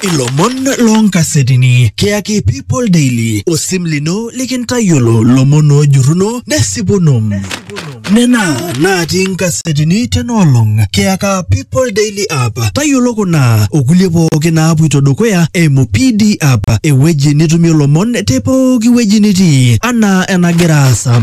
ilomon loonkasetini kiyaki people daily osim lino likintayiolo lomon oojurruno nesipuno nena natii nkasetini tenaolong kiyaka people daily app tayiolo kuna okulie pooki naapuito dukuya eimu pd app ewueji nitumie lomon te pooki wueji nitii anaa enagira aasa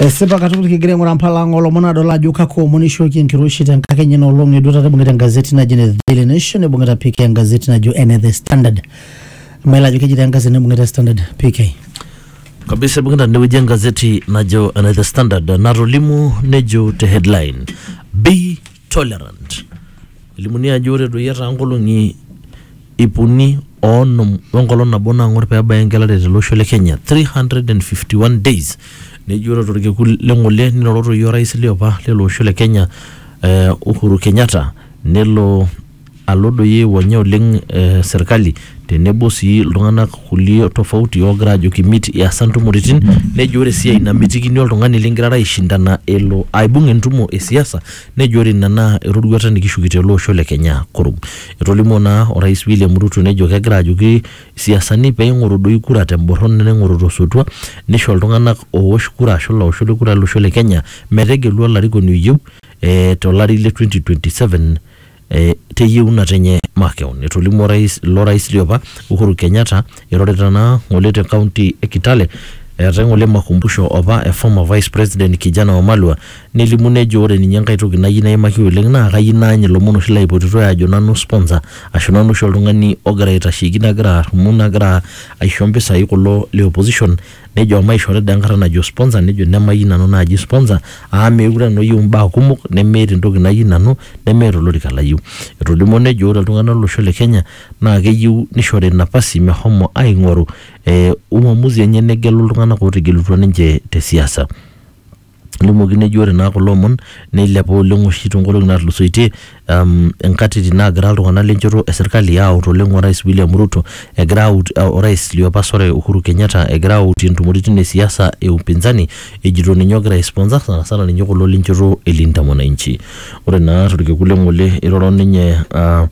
Esipa katukul kigira aing'uraa mpala ang olomon adol ajo kakua omon eishooki enkiroshi tenkakenya ina olong eduata naibung'ita engazeti naji ene Daily Nation neibung'ita PK engazeti najo ene The Standard. Mayiolo ajo keji taa engazeti naibung'ita Standard PK. kabisa ibung'ita tenewueji engazeti najo ene The Standard natolimu nejo te headline bei tolerant. Elimuni ajo ore doi etaa nkolong'i ip uni oonom wenkolong nabo naang'or pee ebaya engelare tele osho le Kenya 351 days neji ore torkekun le ng'ole niroro toi orais liopa lele osho le Kenya eh, Uhuru Kenyatta nelo alo doi aiwonya oleng eh, serkali tenebo sii iltung'anak kulie tofauti oogira ajoki mit iasa ntumoritin nejo ore esiai namitikini oltung'ani lingirara aishindana elo aibung entumo e siasa nejo ore ina naa eroruata nikishuki tele osho le kenya kurum etolimuo naa orais William Ruto nejo kegira ajoki isiasani peing'oru doi kura temborron neing'oru tosotua nisho iltung'anak oowosh kura ashu ilaoshok le kura lolosho le kenya metegelu olarikoni oyieu eh, tolari le 2027 eh, teyieunoto enye makeon. Etolimuo orais ilo rais liopa Uhuru Kenyatta irorita naa ng'ole te kaunti e Kitale eetae ng'ole makumbusho opa e former vice president Kijana Wamalwa nelimu nejo ore ninye enkae toki nayieu naimaki oleng naa kayieu naany ilomon oshi laipotitoi aajo nanu sponsor ashu nanu oshi oltung'ani ogira aitasheki nagira arrumu nagira aisho mpisai kulo le opposition Nejo maishori dee enkata najo sponsor nejo nemayieu nanu naaji sponsor amu meekure nanu ayieu imbaa kumok nemeeta entoki nayieu nanu nemeeta olorika layieu. Etolimuo nejo ore iltung'ana lo losho le Kenya naa keyieu nishori napasi meshomo aing'oru uamuzi enye negelu iltung'ana ootegelutua ninche te siasa. Elimokino eji ore naa kulo omon neilepa oleng oshi toonkolong'i naatulusoitie um inkatitin naagira iltung'anak lenchoto e serkali aaut oleng orais William Ruto egira aut orais liopa sore Uhuru Kenyatta egira autie intumoritin e siasa e upinzani ejito ninye ogira ai sponsor sanasana ninye kulo lenchoto e Linda Mwananchi. Ore naa torkekun le ng'ole eiroro ninye uh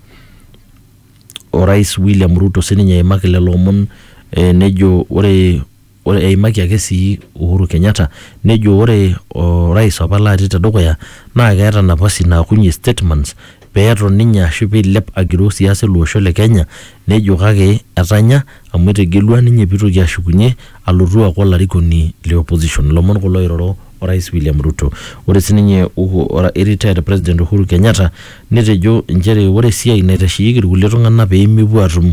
orais William Ruto sininye eimaki lelo omon eh nejo ore Ore eimaki ake sii Uhuru Kenyatta nejo ore orais apa laati tedukuya naa keeta napasi naakunye statements pee eton ninye ashu pee eilep agiroo siasa ele osho le Kenya nejo kake etanya amu etegelua ninye pee eitoki ashukunye alotu aaku olarikoni le opposition. Ilomon kulo oiroro orais William Ruto. Ore sii ninye retired president Uhuru Kenyatta netejo inchere ore esiai naitasheyieki ilkulie tung'ana pee mepuo aatum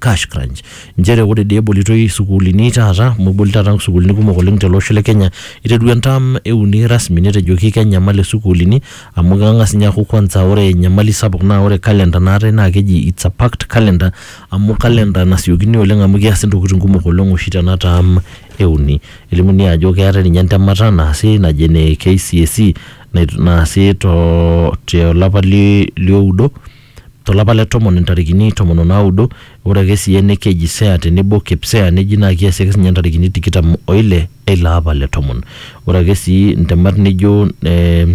cash crunch nchere ore dii ebolitoi sukuulini taata amu eboli taata sukuulini kumok oleng tele osho le Kenya iterua entam euni rasmi netejoki kenyamal isukuulini amu keng'as ninye aaku kwanza ore enyamali sapuk naa ore calendar naatae naa keji it's a packed calendar amu calendar nasiokini oleng amu keasi intokitin kumok oleng oshi tena tam euni elimuni ajo keetae ninye entemata naasi naji ene KCSE nai- naasi too tolapa li- lioudo to lapa le tomon intarikini tomon o naudo, ore ake sii ene keji Sea tenebo Kipsea neji naa kiasi ake sinye intarikini tikitam o ile e ilo apa le tomon. Ore ake sii ntemat nijo eh,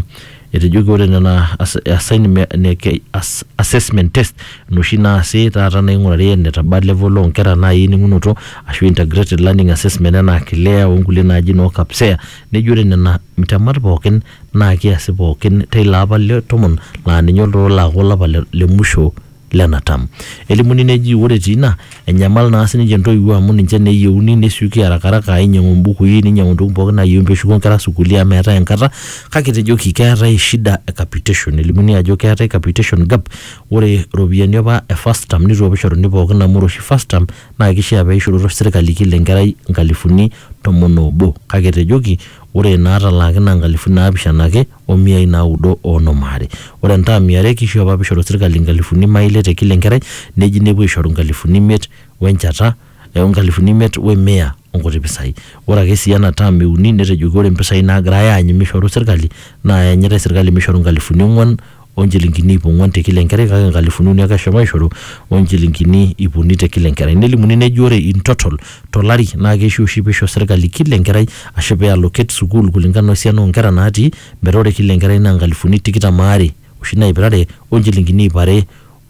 etejoki ore nena as- assignme- ne- ke- ass- assessment test inoshi naasi taata naing'urari enetaba level oo nkera naai ening'unoto ashu integrated learning assessment enaa KLEA o nkulie naaji noo Kpsea neji ore nena temat pookin naa kiasi pookin teilo apa le tomon laa ninye olturur laaku olapa le, le musho lena tam. Elimuni neji ore etii ina, enyamal naa sininche intoiwuo amu ninche naa eyieuni nesioki harakaraka ainyiang'u imbukui ninyiang'u intokitin pookin naayieuni peeshuko inkera sukuuli amu meetae enkata kake etejoki keetae shida e capitation. Elimuni ajo keetae capitation gap ore iropiyiani apa e first term neitu apa eishoruni pookin amu ore oshi first term naa kishia peishororo sirkali kila enkerai inkalifuni tomon oobo kake etejoki Ore inaatalaaki naa nkalifuni naapishana ake o miai naaudo o onom aare. Ore entaam e are keishoo apa peishoru serkali nkalifuni imaai ile te kila enkerai neji nepuo aishoru nkalifuni imiet o enjata o nkalifuni imiet we mia o nkuti pisai. Ore ake sii ena taam e uni netejoki ore mpisai naagirai aanyu meishoru serkali naa eanyitai serkali meishoru nkalifuni ong'uan o nchilingini iip ong'uan te kila enkerai kake nkalifuni uni ake eshomo aishoru o nchilingini iip uni te kila enkerai. Nelimuni neji ore in total to lari naa keishiu oshi peisho serkali kila enkerai ashu pee allocate sukuul kulingana o siana oo nkera naatii metaa ore kila enkerai naa nkalifuni tikitam aare oshi naip are o nchilingini iip are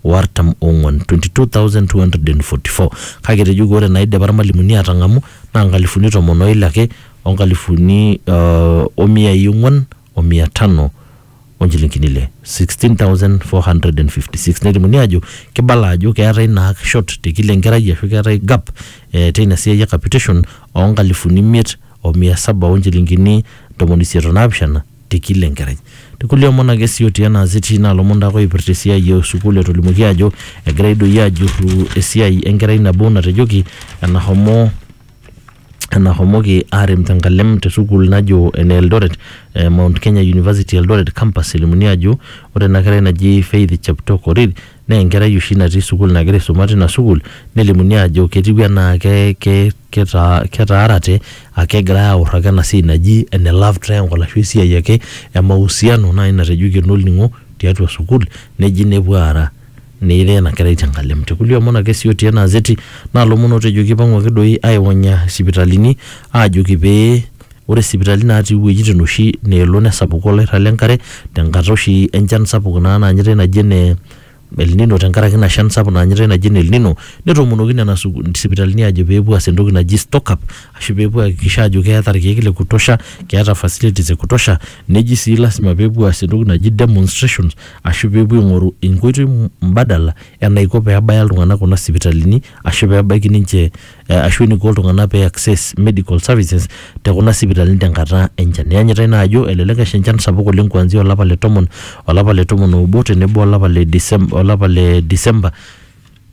o artam ong'uan, 22,244. Kake etejoki ore naaidipa ilmalimuni aatang'amu naa nkalifuni tomon o ile ake o nkalifuni o miyai ong'uan o mia tano. o nchilingini ile 16456 nelimuni ajo kibala ajo keetae naa short te kila enkerai ashu keetae gap eh, teina siai e capitation oo nkalifuni imiet o mia saba o nchilingini ntomoni isiet o naapishana te kila enkerai tekulie omon ake sii otii ena azeti naa lomon taake oipirta esiai e sukuul etolimuoki ajo egirai doi ajurru esiai enkerai nabo natejoki enahomo enahomoki arem tenkalem te sukuul najo ene Eldoret eh, Mount Kenya University Eldoret campus elimuni ajo ore ena kerai naji Faith Cheptoo Korir naa enkerai oshi natii sukuul nagira aisuma tina sukuul nelimuni ajo ketiu enaa ke, ke, keta, ketaarate ake egirai aorro ake ena siai naji ene love triangle ashu esiai ake e mahusiano naaji natejoki enolning'o tiatua sukuul neji nepuo aara Neyirai ena kerai te nkalem. Te kulie omon ake sii otii ena azeti naa lomon ootejoki eipang'u ake doi aaiwonya sipitalini aajoki pee ore sipitalini natii iwuejitin oshi neelo nesapuku olairrag le nkare te nkata oshi e nchan sapuk naa naanyitai naji ene elnino te nkaraki ina shan sapuk naanyitai naji ene elnino netoomonoki nena sipitalini aajo pee epuo aas entoki naji stock up ashu pee epuo aihakikisha aajo keeta irkeek le kutosha, keeta facilities e kutosha. Neji sii lazima pee epuo aas entoki naji demonstrations. aashu pee epuo aing'oru inkoitoi mbadala enaiko pee ebaya iltung'anak kuna sipitalini ashu pee ebaiki ninche ashu eniko iltung'anak pee iaccess medical services te kuna sipitalini tenkata enchan. Iyanyitai naa ajo elelek esha enchan sapuk oleng kuanzia olapa le tomon, olapa le tomon oobo tenebo olapa le Decem, olapa le December.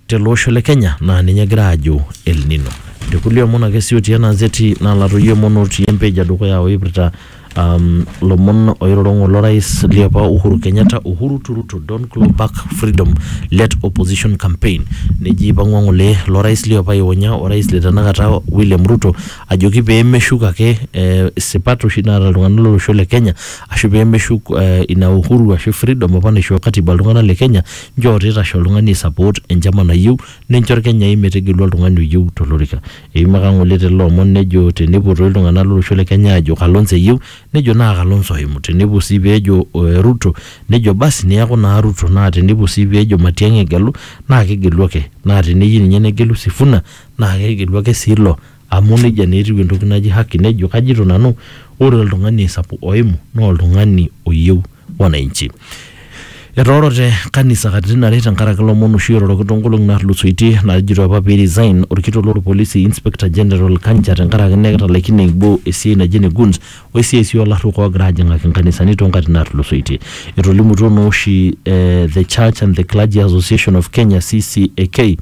tele osho le Kenya naa ninye egira aajo El Nino. Te kulie omon ake sii otii ena zeti nalatoyio emon otii empage edukuya oipirta um, lomon oiroro ng'ole orais liopa Uhuru Kenyatta, Uhuru to Ruto, don't claw back freedom, let opposition campaign. Neji eipang'ua ng'ole lo rais liopa aionya orais le tenakata William Ruto ajoki pee meshuk ake eh, sipat oshi naata iltung'anak lo losho le Kenya ashu pee meshuk eh, ina uhuru ashu freedom apa naishoo katiba iltung'anak le Kenya Njoo teitashe oltung'ani aisapot enchama nayieu nincho Ilkenyai metegelu oltung'ani oyieu tolorika. Eimaka ng'ole te lelo omon nejo tenepuo toi iltung'ana lolosho le Kenya aajo Kalonzo eyieu nejo naa Kalonzo oimu, tenepuo sii pee ejo Ruto nejo basi neaku naa Ruto naa tenepuo sii pee ejo Matiang'i egelu naa kegelu ake. Naa teneyieu ninye negelu Sifuna naa kegelu ake sii ilo. Amu neijia naa etiu entoki naji haki nejo, kajito nanu ore oltung'ani aisapuk oimu naa oltung'ani oyieu wananchi. Etoorote kanisa katitin are tenkaraki lomon oshi oiroroki toonkolong'i naatulusoitie naajito apa pee resign olkitok loo lpolisi Inspector General Kanja tenkaraki naa ketalaikine aibooi esiai naji ene Goons o esiai sii oo larruok oogira aajing'aki nkanisani too nkatitin naatulusoitie. Etolimutuo naa oshi The Church and the Clergy Association of Kenya, CCAK,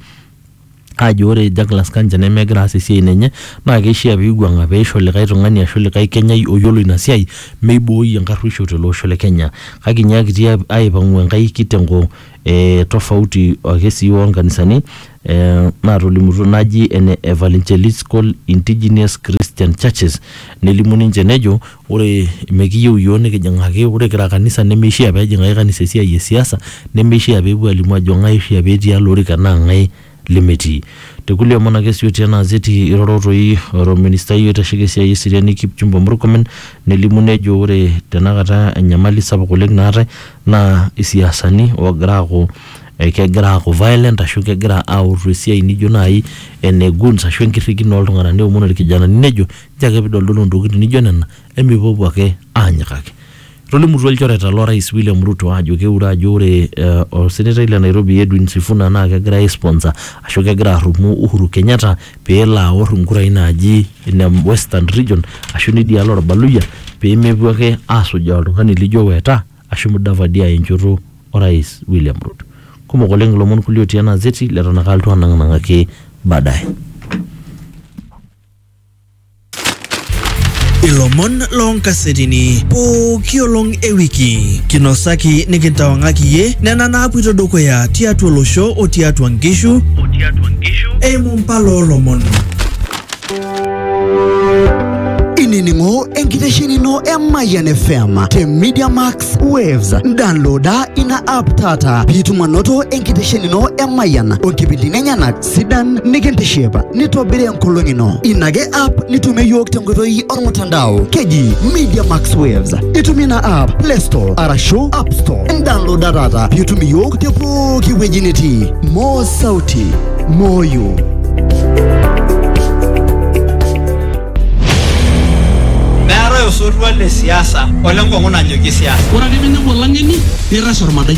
ajo ore Douglas Kanja nemegira aas esiai nenye naa keishaa peiwuang'a peisho likae tung'ani ashu likae kenyai oyiolo ina siai meibooi enkarruisho tele osho le Kenya. Kake inyiakitia aipang'u enkae kitengo e tofauti ake sii oo nkanisani ee natolimutuo naji ene Evangeliscal Indigenous Christian Churches nelimu ninche nejo Ore mekiyieu iyiook nikijing'aki, ore kira kanisa nemeishia pee ejing'aki kanisa esiai e siasa, nemeishia pee epuo aalimu aajo ng'ae oishia pee etii ele orika naa ng'ae lemetii. Te kulie omon ake sii otii ena azeti eiroro toi orministai oitasheki esiai e seriani Kipchumba Murkomen nelimu nejo ore tenakata enyamali sapuk oleng naatae naa isiasani oogira aaku kegira aaku violent ashu kegira aautu esiai nijo naai ene goons ashu enkirrikino oo ltung'anak neomon irkijanani nejo Kajo ake pidoldolo ntokitin nijo nena emipuopuo ake anyikaki. Etolimutuo ilchoreta lo rais William Ruto ajo keure ajo ore osenetai le Nairobi Edwin Sifuna naa kegira ai sponsor ashu kegira arrumoo Uhuru Kenyatta pelo aor inkurai naaji ine western region ashu nidialo olbaluyia pemepuo ake asujaa oltung'ani lijo Weta ashu Mudavadi aya enchoto o rais William Ruto. Kumok oleng ilomon kulie otii ena gazeti leton ake alotu anang'aki baadaye. Ilomon loo nkasetini pooki olong e wiki kinosaki nikintawang'aki iye nena naapuito dukuya tiatua olosho o tiatua nkishu eimu mpala oo lomon. Inining'o enkitesheni ino e Mayian FM te Media Max Waves. Downloada ina app taata piitum anoto enkitesheni ino e Mayian o nkipindini enyenak sidan nikintiship nitobiri enkolong ino ina ake app nitumie yiok tenkoitoi ormutandao keji media max waves itumie ina app play store arashu app store indownloada taata piitum iyiok te pooki wueji nitii moo sauti moyo meetae osotua le siasa ole nkong'u najoki siasa Ore ake pee inepu olang'eni nirrash ormadai.